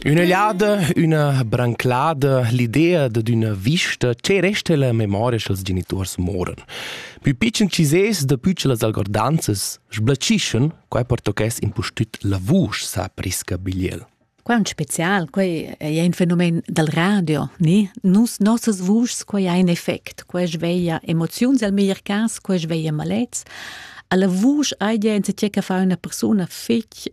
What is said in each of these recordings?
Üna liada, üna branclada, l'idea dad üna vista che resta la memoria sch'els genituors moran. Pü pitschen chi ses da pü che las algordanzas sblaccischen, quai pertochess impustüt la vusch, sa Prisca Bigliel. Quai è un spezial, quai è un fenomen dal radio, ni? Nus nossas vuschs, quai ha un effect, quai sveglia emoziuns al meglier cas, quai sveglia malets. Alla vusch hai jens che fa una persona fitg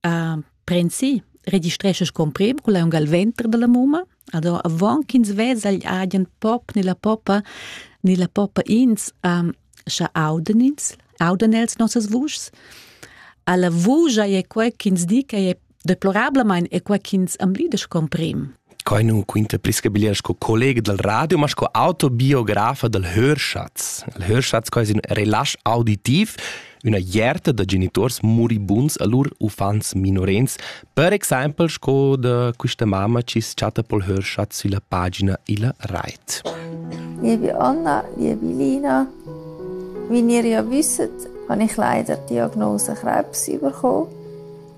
A prensi registreschas comprim cun l'aungal venter dalla mumma. Ado avon ch'ins vesa agl agen pop ni la poppa ni la poppa ins um, scha auden ins, auden els nossas vuschs. Alla vusch ei quei ch'ins di che è deplorablamein è quei ch'ins am lides comprim. Quai nun quinta pli scabiglier sco collega dal radio, ma sco autobiografa dal Hörschatz. Il Hörschatz quai es ün relasch auditiv, üna ierta da geniturs muribunds a lur uffants minorens, per exaimpel sco da quista mamma chi chatta pel Hörschatz sülla pagina illa rait. Liebe Anna, liebe Lina, wie ihr ja wisst, habe ich leider die Diagnose Krebs bekommen.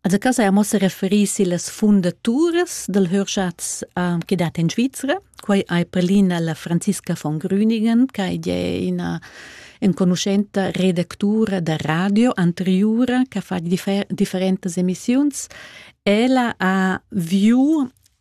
Also cas haja mossa referì sillas fundaturas dal Hörschatz uh, che dat in Svizzera. Quai hai prelina la Franziska von Grüningen, che è una enconuschenta redactura da radio anteriora che fa differ- differentas emissioni. Ella ha viu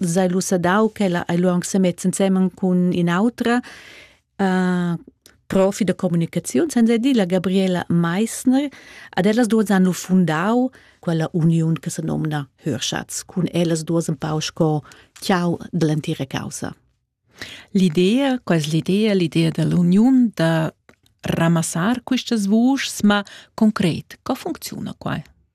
sei lu sadau ch'ella ei lu aunc semets ensemen cun in'autra uh, profi da communicaziun, senza dir la Gabriela Meissner. Ad ellas duas han lu fundau quella uniun che se nomna Hörschatz, cun ellas duas un pau sco ciao dell'entira causa. L'idea, qual l'idea, l'idea dell'uniun da ramassar questas vuschs, ma concret, co funziona qua?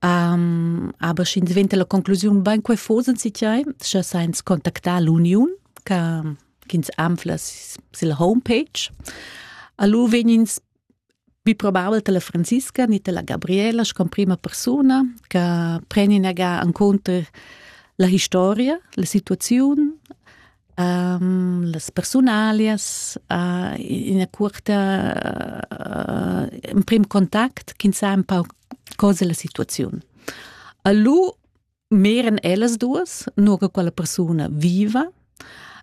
Aber sch'ins venta la conclusiun bain quai fosen si tiai, scha sainz contactar l'uniun ch'ins anfla sil homepage. Allu vegnins pi probabel ta la Franziska ni ta la Gabriela sco prima persuna che preni naga en conto la historia, la situaziun, las persunalias ina cuorta emprim contact ch'ins sa un pau cosa la situaziun. A lu meran ellas duas, nur che quella persuna viva.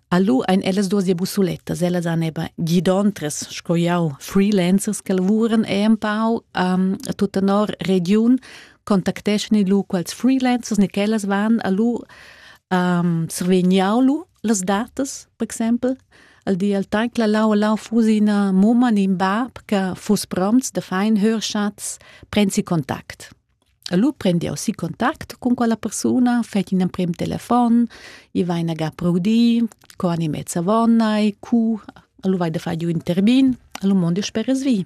A lu ein ellas duas ja busulettas, ellas han eben gidontras, sco jau, freelancers che lavuran e un pau um, a tutta nor regiun, contacteschan lu quels freelancers ni quellas van a lu um, survegniau lu las datas, per exempel, al di al temps che la lau lau fusi ina mumma in in bab che fuss prompts da far in hörschatz, prensi contact. Allora prendi aussi contact con quella persona, fai un prim telefon, i vai in aga proudi, co ani mezza vonna e cu, allora vai da fare un terbin, allora mondo speres vi.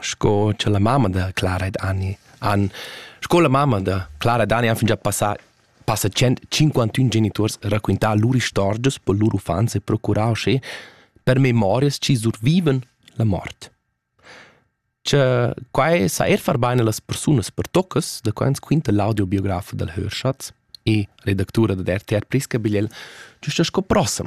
Sco cha la mamma da Clara ed Ani han sco la mamma da Clara ed Ani han fingià passà passa tschient cinquantun genituors raquintà lur istorgias per lur uffants e procurà uschè per memorias chi survivan la mort. Cha quai sa eir far bain a las persunas pertoccas, da quai ans quinta l'audiobiografia dal Hörschatz e redactura dad RTR Prisca Bigliel güsta sco prossem.